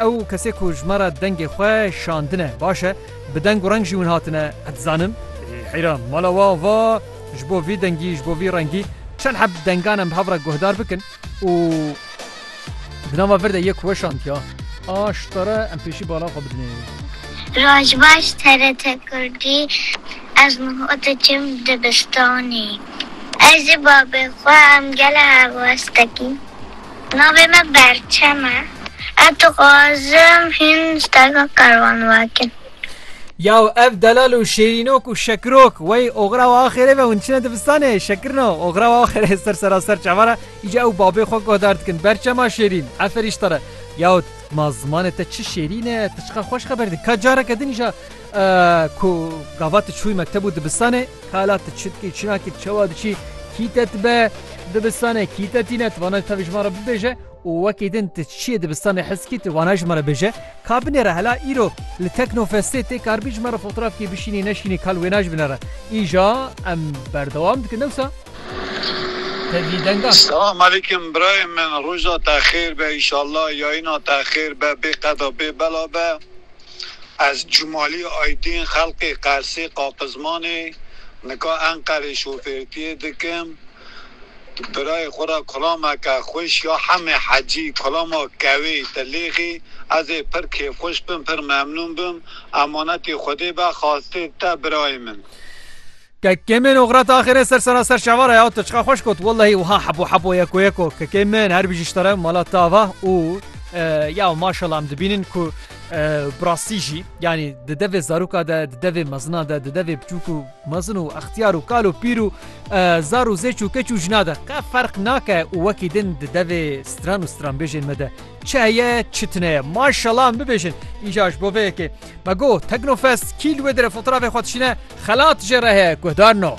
Ew kesê ku ji me re dengê xwe şandine, baş e bi deng û reng jî hûn hatine dizanin. Heyran mala we ava ji bo vî dengî, ji bo vî rengî çend heb dengan em bi hev re guhdar bikin û di nava vir de yê ku weşandiya a şitare em pêşî bala xwe bidinê. Roj baş TRT Kurdî Ez Muho diçim dibistanê. Ez û babê xwe em gelê helwestekîn. Navê me Berçem e. Ez dixwazim hîn steka Karwan wekin. Yaw ev delal û şêrînok û şekirok wey oxira we axêrê ve hûn diçine dibistanê şekirino oxira we axêrê ser sera ser çavan e îca ew babê xwe guhdar dikin berçema şêrîn eferîş te re yaw ma zimanê te çi şêrîn e tu çiqar xweş xeber dî ka careke din îja Ku gava tu çûyî mekteb û dibistanê, kala tu çi dikî, çinakî tu çawa diçî, kî te dibe dibistanê, kî te tîne, tu wana tevî ji me re bibêje û wekî din tu çiyê dibistanê hes dikî, tu wana ji me re bêje. Ka binêre hela îro li Teknofestê tê kar bî ji me re fotrafkî bişînî neşînî kal wê na ji binêre. Îja em berdewam dikin dewsa tevî dengan. Selam aleykum birayên min roja te xêr be inşallah yayina te xêr be bê qeda bê bela be. Ez Cumali Aydin xelkê Qersê Qaqizmanê nika Enqerê şofêrtiyê dikim. Birayê xwe ra kulameke xweş ya Hemê Hecî, kulama kewê, tilêxî. Ez ê pir kêfxweş bim, pir memnûn bim. Emanetê Xwedê be, xastê te birayê min. Kekê min Ogret axirê ser sera ser şevara ya tu çiqa xweş got wellehî wiha hebo hebo yeko yeko kekê min her bijî ji te re mala te ava û ya maşallah em dibînin ku bi rastî jî yanî di devê zaroka de di devê mezina de di devê biçûk û mezin û extiyar û kal û pîr û zar û zêç û keç û jina de qe ferq nake û wekî din di devê stran û stranbêjên me de çi heye çi tune ye maşallah em bibêjin îja ji bo vê yekê Bego, Teknofest, kî li wê dire fotoğrafê xwe dişîne, xelat jê re heye, guhdar no.